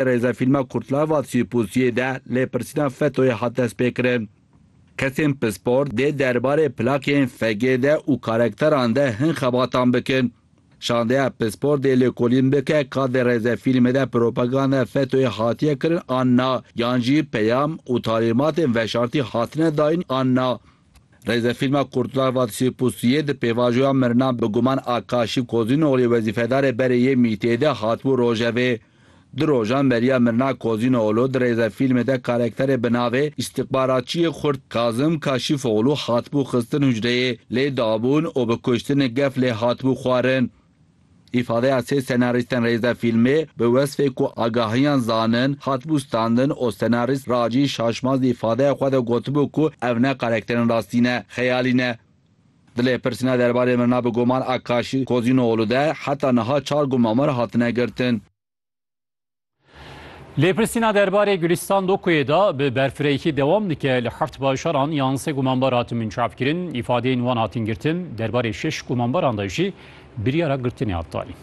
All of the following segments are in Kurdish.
Rêzefîlma Kurtlava Sîrpûsiyê de lêpirsîna FETÖ'yê hat destpêkirin. Kesên pispor dê derbarê plakên FG de û karekteran de hin xebatan bikin. Şandeya pispor dê lêkolîn bike ka di rêzefîlmê de propaganda FETÖ'yê hatiye kirin an na, yan jî peyam û talîmatên veşartî hatine dayîn an na. Rêzefîlma Kurtlar Vadisi Pustiye di pêvajoya mirina bi guman a Kaşî Kozînogliyê wezîfedarê berê yê MۊT'ê de hatibû rojevê. Du rojan beriya mirina Kozînoglu di rêzefîlmê de karekterê bi navê Îstîxbaratçiyê Xurt Kazim Kaşîfoglu hatibû xistin hucreyê, lê dabûn û bi kuştinê gef lê hatibû xwarin. Îfadeya sê senarîstên rêze fîlmê bi wesfê ku agahiyan zanin hatibû standin û senarîst Racî Şaşmaz di îfadeya xwe de gotibû ku ev ne karekterên rastî ne, xeyalî ne. Di lêpirsîna derbarê mirina bi guman Akkaşî Kozînoğlu de heta niha çar gumamer hatine girtin. Lêpirsîna derbarê Gulîstan Dokuyê de bi berfirehî dewam dike li heft bajaran yan sê gumanbar hatin binçavkirin, îfadeyên wan hatin girtin, derbarê şeş gumanbaran de jî biryara girtinê hat danîn.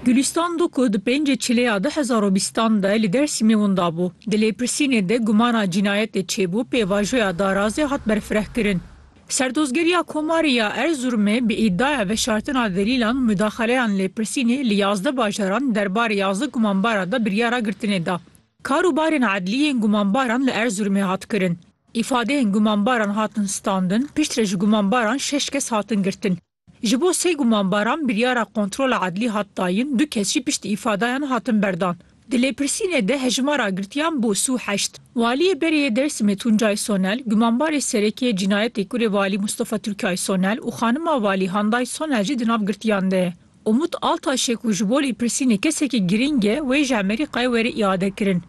Gulîstan Doku di pêncê Çilêya du hezar û bîstan de li Dêrsîmê winda bû. Di lêpirsînê de gumana cînayetê çêbû pêvajoya darazê hat berfirehkirin. Serdozgeriya Komarê ya Erzurumê bi îdiaya veşartina delîlan û mudaxaleyan lêpirsînê li yazdeh bajaran derbarê yazdeh gumanbaran de biryara girtinê da. Kar û barên edlî yên gumanbaran li Erzurumê hat kirin. Îfadeyên gumanbaran hatin standin, piştre ji gumanbaran şeş kes hatin girtin. Ji bo sê gumanbaran biryara kontrola edlî hat dayin, du kes jî piştî îfadayan hatin berdan. Di lêpirsînê de hejmara girtiyan bû sî û heşt. Waliyê Berêyê Dêrsimê Tuncay Sonel, gumanbarê sereke yê cînayetê kurê Walî Mustafa Turkay Sonel û xanima Walî Handay Sonel jî di nav girtiyan de ye. Umut Altaş e ku ji bo lêpirsînê kesekî girîng e, wê ji Amerîkayê were îadekirin.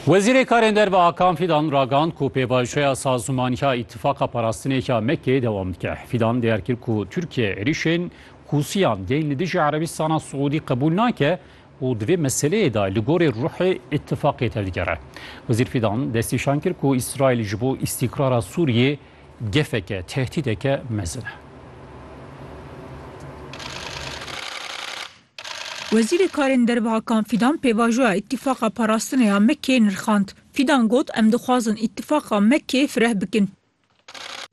Wezîrê Karên Derve Hakan Fîdan ragand ku pêvajoya sazûmaniya îtifaqa parastinêka Mekkeyê dewam dike. Fîdan diyar kir ku Tirkiye êrîşên Hûsiyan yên li dijî Erebistana Siûdî qebûl nake û di vê meseleyê de li gorî ruhê îtifaqê tevdigere. Wezîr Fîdan destnîşan kir ku Îsraîl ji bo îstîkrara Sûriyê Gefeke, tehdîdeke mezin e. Wezîrê Karên Derve Hakan Fîdan pêvajoya Îtîfaqa Parastinê ya Mekkeyê nirxand. Fîdan got, Em dixwazin Îtîfaqa Mekkeyê fireh bikin.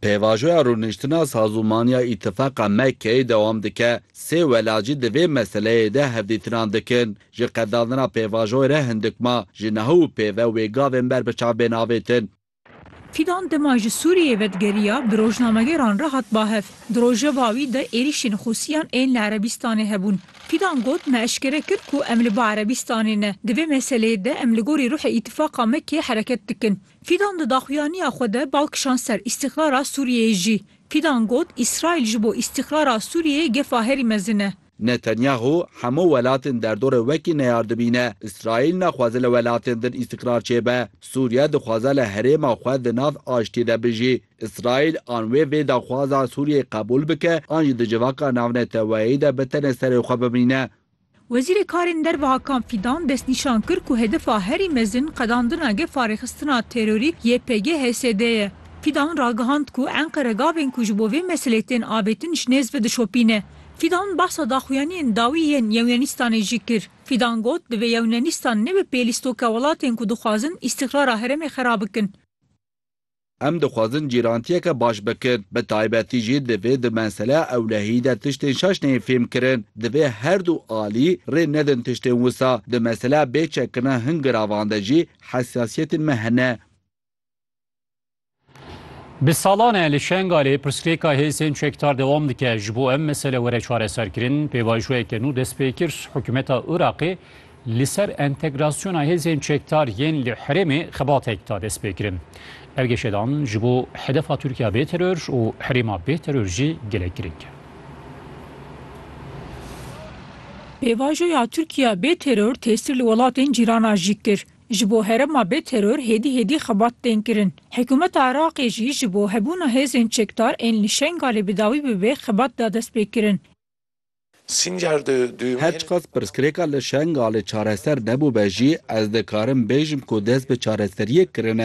Pêvajoya rûniştina sazûmaniya Îtîfaqa Mekkeyê dewam dike, Sê welacî di vê meseleyê de hevdîtinan dikin. Ji qedandina pêvajoyê re hindik ma, ji neho û pê ve wê gavên ber bi çav bên avêtin. Fidan dima ji Sûriyeyê vedigerîya bi rojnamegeran re hat bahev. Di rojeva wî de êrîşên Xusiyan ên li Erebîstanê hebûn. Fidan got, Me eşkere kir ku em li ba Erebîstanê ne. Di vê meseleyê de em li gorî ruhê Îtîfaqa Mekê hereket dikin. Fidan di daxuyaniya xwe de bal kişand ser îstîqlala Sûriyeyê jî. Fidan got, Îsraîl ji bo îstîqlala Sûriyeyê gefa herî mezin e. Netanyahu hemû welatên derdorê wekî neyar dibîne. Îsraîl naxwaze li welatên din îstîqrar çêbe. Sûriye dixwaze li herêma xwe di nav aştiyê de bijî. Îsraîl an wê vê daxwaza Sûriyeyê qebûl bike an jî di civaka navneteweyî de bi tenê serê xwe bimîne. Wezîrê Karên Derve Hakan Fîdan destnîşan kir ku hedefa herî mezin qedandina gefarêxistina terorî YPG-HSD ye. Fîdan ragihand ku Enqere gavên ku ji bo vê meselê tên avêtin ji nêz ve dişopîne. Fidan behsa daxuyaniyên dawî yên Yewnenîstanê jî kir. Fidan got, Divê Yewnenîstan nebe pê lîstoka welatên ku dixwazin îstîqrara herêmê xera bikin. Em dixwazin cîrantiyeke baş bikin. Bi taybetî jî divê di meseleya ewlehiyî de tiştên şaş neyên fêm kirin. Divê her du alî rê nedin tiştên wisa. Di meseleya bê çekkirina hin giravan de jî hesasiyetên me hene. Bi salan e li Şengalê pirsgirêka hêzên çekdar dewam dike. Ji bo em mesele were çareserkirin, pêvajoyeke nû dest pê kir. Hikûmeta Iraqê li ser entegrasyona hêzên çekdar yên li herêmê xebatek da destpêkirin. Ev geşedan ji bo hedefa Tirkiya bê teror û herêma bê teror jî gelek girîng e. Pêvajoya Tirkiya bê teror tesîr li welatên cîranan jî kir. Ji bo herêma bê teror hêdî hêdî xebat tên kirin. Hikûmeta Iraqê jî ji bo hebûna hêzên çekdar ên li Şengalê bi dawî bibe xebat da dest pê kirin. Her çiqas pirsgirêka li Şengalê çareser nebûbe jî ez dikarim bêjim ku dest bi çareseriyê kirine.